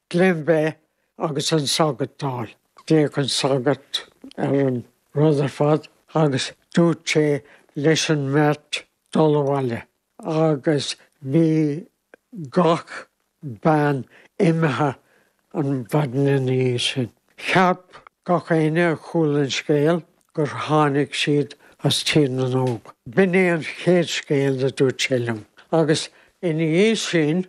Glen Beith agus an sagart Dall. D'fhéach an sagart ar an Rutherford agus dúirt sé leis an mbeirt dul abhaile agus bhí gach bean imithe an mhaidin ina dhiaidh sin. Cheap gach éinne a chuala an scéal gur tháinig siad as Tír na nÓg. B'in é an chéad scéal a dúirt sé liom, agus ina dhiaidh sin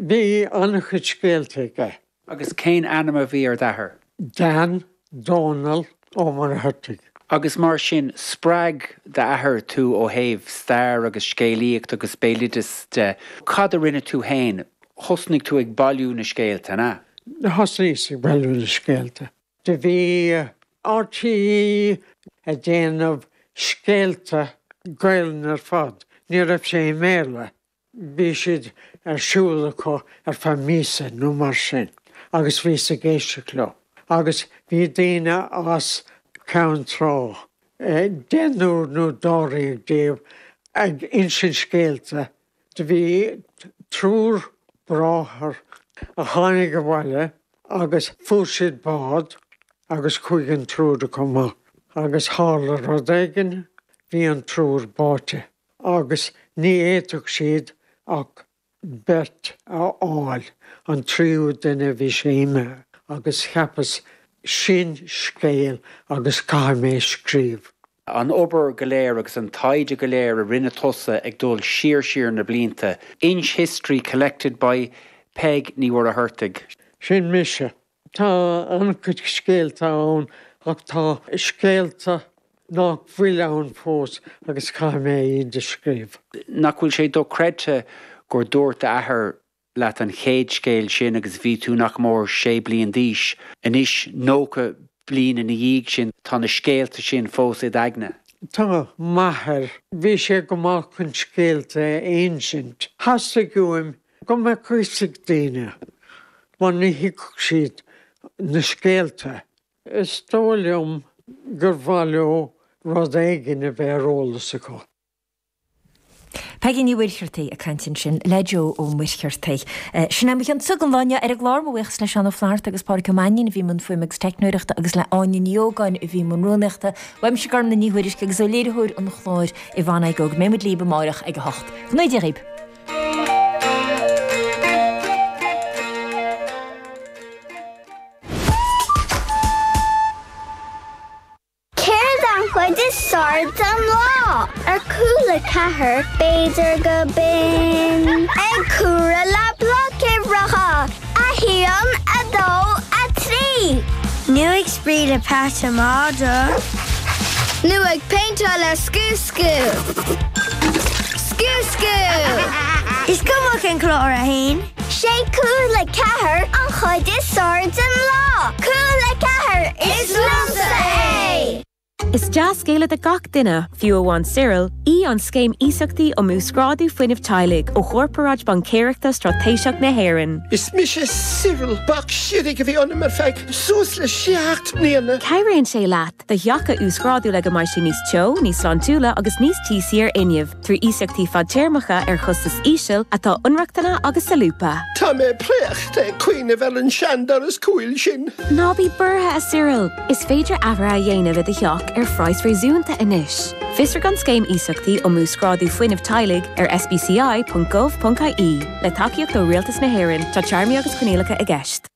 Bhí an-chuid scéalta aige. Agus cén ainm a bhí ar d'athair? Dan, Dónall, Ó Muircheartaigh. Agus mar sin, spreag d'athair tú ó thaobh stair agus scéalaíocht agus béaloideas de. Cad a rinne tú féin? Thosnaigh tú ag bailiú na scéalta, an ea? Thosnaíos ag bailiú na scéalta. Do bhí RTÉ a' déanamh scéalta, Gaolainn ar fad, ní raibh sé i mBéarla. bhí siad ar siúl acu ar feadh míosa nó mar sin agus bhíos ag éisteacht leo agus bhí daoine as Ceann Trá, deichniúr nó dáréag díobh, ag insint scéalta. Do bhí triúr bráthar a tháinig abhaile agus fuair siad bád agus chuaigh an triúr acu amach agus tharla rud éigin, bhí an triúr báite. agus ní fhéadfadh siad ach beirt a fháil, an tríú duine bhí sé imithe, agus cheapas, sin scéal agus caithfidh mé scríobh. an obair go léir agus an taighde go léir a rinne tusa ag dul siar siar na blianta, Inch History collected by Peig Ní Mhuircheartaigh. Sin mise. Tá an-chuid scéalta ann ach tá scéalta nach bhfuil ann fós agus caithfidh mé iad a scríobh. Nach bhfuil sé dochreidte gur dúirt d'athair leat an chéad scéal sin agus bhí tú nach mór sé bliain d'aois. Anois, 90 bliain ina dhiaidh sin, tá na scéalta sin fós id aigne. Tá, m'athair. Bhí sé go maith chun scéalta a insint. Theastaigh uaim go mbeadh fhios ag daoine mar ní thuigfeadh siad na scéalta. Is dóigh liom gur mhaith leo rud éigin a bheith ar eolas acu. Peigí Ní Mhuircheartaigh ag caint ansin le Joe Ó Muircheartaigh. Sin é mo chion daoibh inniu ar an gclár. Mo bhuíochas le Seán Ó Flaithearta agus Pádraig Ó Mainnín a bhí i mbun fuaime agus teicneoireachta agus le Áine Ní Ógáin a bhí i mbun rúnaíochta. Uaimse Gormfhlaith Ní Thuairisg agus ó léiritheoir an chláir Yvonne Aigoe go mbeidh muid libh amárach ag a hocht. Go n-éirí dhaoibh! Céard é an chuid is fearr den lá? Ar Cúla4 b'fhéidir go binn. Ag comhaireamh le bloic uimhreacha, a haon, a dó, a trí. Nú ag spraoi le peata madra. Nú ag péinteáil le scuab. Sciúr! Sciúr sciúr! Is cuma cén clár a théann. Sé Cúla4 an chuid is fearr den lá. Cúla4, is liomsa é! Is dea-scéala do gach duine, fiú amháin Cyril, í an Scéim Iasachtaí um Uasghrádú Fuinnimh Teaghlaigh ó Chorparáid Baincéireachta Straitéiseach na hÉireann. Is mise Cyril, bac séidtí a bhí ionam ar feadh suas le seacht mbliana. Cabhraíonn sé leat do theach a uasghrádú le go mbeidh sé níos teo, níos sláintiúla agus níos tíosaí ar fhuinneamh, trí iasachtaí fadtéarmacha ar chostas íseal atá inrochtana agus solúbtha. Tá mé préachta ag cuimhneamh ar an seandoras cúil sin. Ná bí buartha, a Cyril! Is féidir athruithe a dhéanamh i do theach ar phraghas réasúnta anois. Fiosraigh an Scéim Iasachtaí um Uasghrádú Fuinnimh Teaghlaigh ar sbci.gov.ie. Le tacaíocht ó Rialtas na hÉireann, tá téarmaí agus coinníollacha i gceist.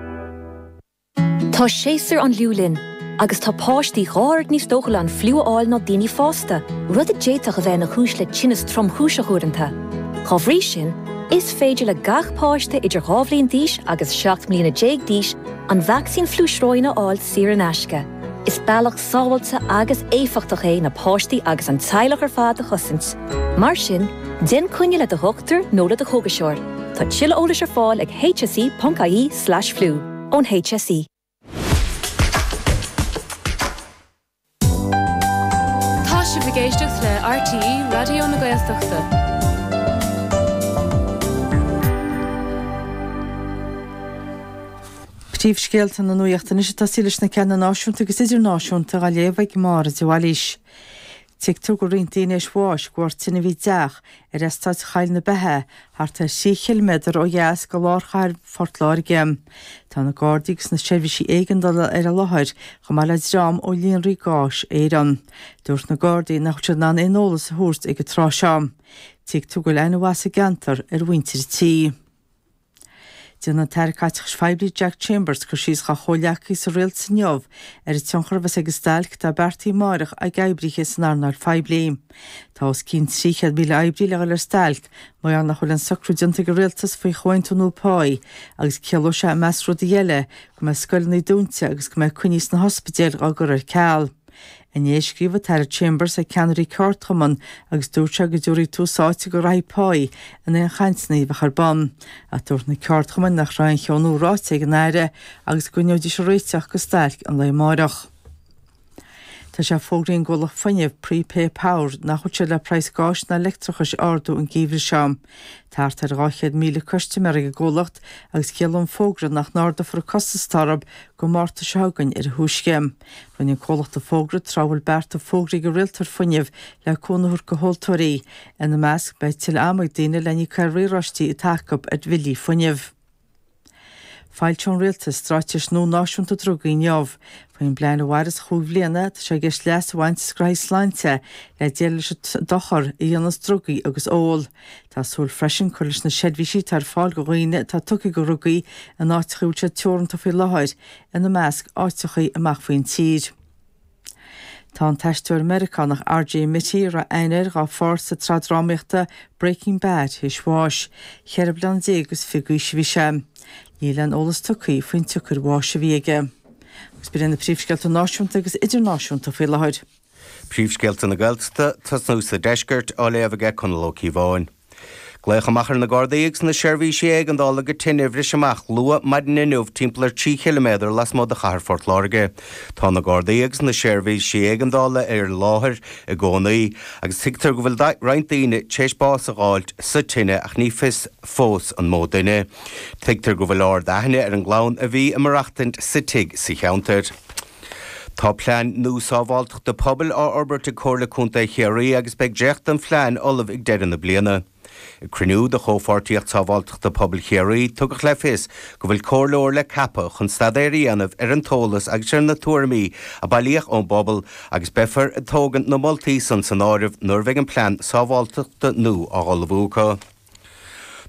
Tá séasúr an fhliú linn, agus tá páistí dhá oiread níos dóchúla an fliú a fháil ná daoine fásta, rud a d'fhéadfadh a bheith ina chúis le tinneas tromchúiseach uaireanta. Dá bhrí sin, is féidir le gach páiste idir dhá bhliain d'aois agus seacht mbliana déag d'aois an vacsaín fliú sróine a fháil saor in aisce. Is bealach sábháilte agus éifeachtach é na páistí agus an teaghlach ar fad a chosaint. Mar sin, déan coinne le do dhochtúir nó le do chógaiseoir. Tá tuilleadh eolais ar fáil ag hse.ie/flu ón HSE. Tá sibh ag éisteacht le RTÉ Raidió na Gaeltachta. Príomhscéalta na nuachta anois agus tá siad, leis na ceanna náisiúnta agus idirnáisiúnta á léamh ag Máire de Bhailís. Tuigtear go bhfuil roinnt daoine théis bháis de bharr tine a bhí i dteach ar eastát Cheol na Mara, thart ar thrí chiliméadar ó dheas de lár chathair Phort Láirge. Tá na Gardaí agus na seirbhísí éigeandála ar an láthair, chomh maith le dream ó Líonraí Gáis Éireann. Dúirt na Gardaí nach bhfuil siad in ann aon eolas a thabhairt ag an tráth seo. Tuigtear go bhfuil an-mheas sa gceantar ar mhuintir an tí. Déanfaidh an tAire Caiteachais Phoiblí Jack Chambers cur síos dá chomhghleacaí sa rialtas inniu ar an tionchar a bheas ag an stailc atá beartaithe amárach ag oibrithe san earnáil phoiblí. Tá os cionn 300,000 oibrí le dhul ar stailc mar nach bhfuil aon socrú déanta ag an rialtas faoi chomhaontú nua pá agus ciallóidh sé, i measc rudaí eile, go mbeidh scoileanna dúnta agus go mbeidh coinní sna hospidéil dhá gcur ar ceal. Inné, scríobh an tAire Chambers le ceannairí ceardchumann agus dúirt sé go dtabharfaí tús áite go rátaí páí in aon chainteanna a bheadh ar bun. Ach dúirt na ceardchumainn nach raibh aon cheo nua ráite ag an Aire agus go gcoinneoidís ag réiteach go stailc an lae amárach. Tá sé fógraithe ag an gcomhlacht fuinnimh, Prepay Power, nach bhfuil siad le praghas gáis ná leictreachais a ardú an geimhreadh seo. Tá thart ar 200,000 custaiméir ag an gcomhlacht agus ciallaíonn an fógra nach n-ardófar an costas orthab go Márta seo chugainn ar a thúisce. Rinne an comhlacht an fógra tráth a bhfuil bearta fógraithe ag an rialtóir fuinnimh le cúnamh a thabhairt do thomhaltóirí. Ina measc, beidh tuilleadh ama ag daoine le n-íoc ar riaráistí atá acu ar bhillí fuinnimh. Foilseoidh an Rialtas straitéis nua náisiúnta drugaí inniu. Faoin bplean a mhairfeas chúig bhliana, tá sé i gceist leas a bhaint as graithí sláinte le déileáil leis an dochar a dhéanas drugaí agus ól. Tá súil freisin cur leis na seirbhísí atá ar fáil go dhaoine atá tugtha go dhrugaí in áiteacha a bhfuil siad teoranta faoi láthair, ina measc áiteachaí amach faoin tír. Tá an t-aisteoir Meiriceánach RJ Mitte, a raibh aithne air dá pháirt sa tsraith drámaíochta Breaking Bad, théis bháis. Ceithre bliana déag is fiche d'aois a bhí sé. Níl aon eolas tugtha faoin tsiocair bháis a bhí aige. Agus b'in é na príomhscéalta náisiúnta agus idirnáisiúnta faoi láthair. Príomhscéalta na Gaeltachta, tosnú sa Deisceart, á léamh aige Conall Ó Cíobháin. Glaodh amach ar na Gardaí agus na seirbhísí éigeandála go tine a bhris amach luath maidin inniu timpeall ar 3 chiliméadar lasmuigh de chathair Phort Láirge. Tá na Gardaí agus na seirbhísí éigeandála ar an láthair i gcónaí agus tuigtear go bhfuil roinnt daoine tar éis bás a dh'fháilt sa tine ach ní fios fós an mó duine. Tuigtear go bhfuil ardaithne ar an gclann a bhí ag maireachtaint sa tigh sa cheantar. Tá plean nua sábháilteachta pobail á fhorbairt ag Comhairle Contae Chiarraí agus beidh dréacht den phlean ullamh ag deireadh na bliana. Ag cruinniú de Chomhpháirtíocht Sábháilteachta Pobail Chiarraí, tugadh le fios go bhfuil comhairleoir le ceapadh chun staidéar a dhéanamh ar an t-eolas agus ar na tuairimí a bailíodh ón bpobal agus beifear ag tógaint na moltaí san san áireamh nuair a bheidh an plean sábháilteachta nua á ullmhú acu.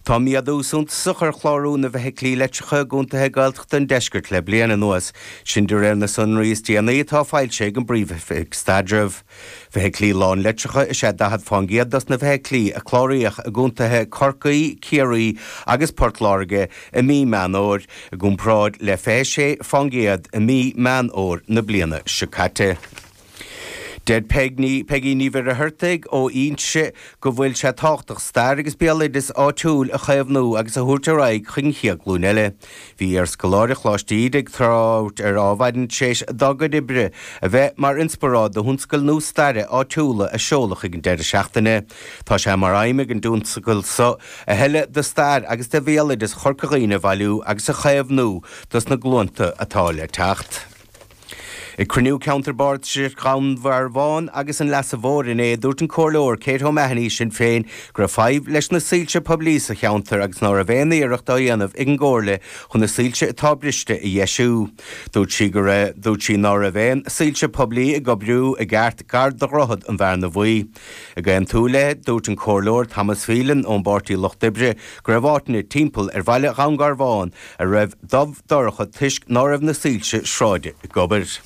Tá méadú suntasach ar chlárú na bhfeithiclí leictreacha i gcontaetha Gaeltachta an deiscirt le bliain anuas, sin de réir na sonraí is déanaí atá foilsithe ag an bPríomh-Oifig Staidrimh. Feithiclí lánleictreacha is ea 40 fán gcéad dos na feithiclí a cláraíodh i gcontaetha Corcaí, Ciarraí agus Port Láirge i mí Meán Fhómhair, i gcomparáid le 26 fán gcéad i mí Meán Fhómhair na bliana seo caite. Deir Peigí Ní Mhuircheartaigh ó Inse go bhfuil sé tábhachtach stair agus béaloideas áitiúil a chaomhnú agus a thabhairt ar aghaidh chuig an gcéad glúin eile. Bhí iarscoláire Choláiste Íde ag trácht ar an ábhar tar éis dá cuid oibre a bheith mar inspioráid do thionscadal nua staire áitiúla a seoladh ag an deireadh seachtaine. Tá sé mar aidhm ag an dtionscadal seo a thuilleadh de stair agus de bhéaloideas Chorca Dhuibhne a bhailiú agus a chaomhnú dos na glúnta atá le teacht. Ag cruinniú ceantar Bardasach Dhún Garbháin agus an Leasa Mhóir inné, dúirt an Comhairleoir Kate O'Mahoney, Sinn Féin, go raibh fadhb leis na soilse poiblí sa cheantar agus ná raibh aon iarracht á dhéanamh ag an gComhairle chun na soilse atá briste a dheisiú. Dúirt sí go raibh, dúirt sí ná raibh aon soilse poiblí ag oibriú i gceart gar do Dhroichead an Bhearna Bhuí. Ag aontú léi, dúirt an Comhairleoir Thomas Phelan ón bPáirtí Lucht Oibre go raibh áiteanna timpeall ar bhaile Dhún Garbhán a raibh dubh dorcha toisc ná raibh na soilse sráide ag obair.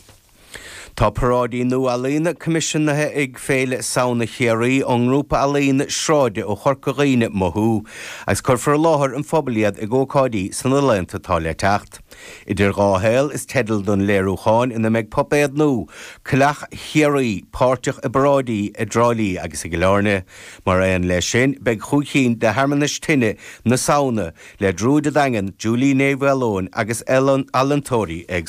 Tá paráidí nua ealaíne coimisiúnaithe ag Féile Samhna Chiarraí ón ngrúpa ealaíne sráide ó Chorca Dhuibhne Mothú agus cuirfear i láthair an phobail iad ag ócáidí sna laethanta atá le teacht. Idir Dhá Shaol is teideal don léiriúcháin ina mbeidh puipéad nua, Cailleach Chiarraí, páirteach i bparáidí i dTrá Lí agus i gCill Airne. Mar aon leis sin, beidh chúig cinn de shearmanais tine na Samhna, le Druid an Daingin, Juli Ní Mhaoileoin agus ealaíontóirí éagsúla.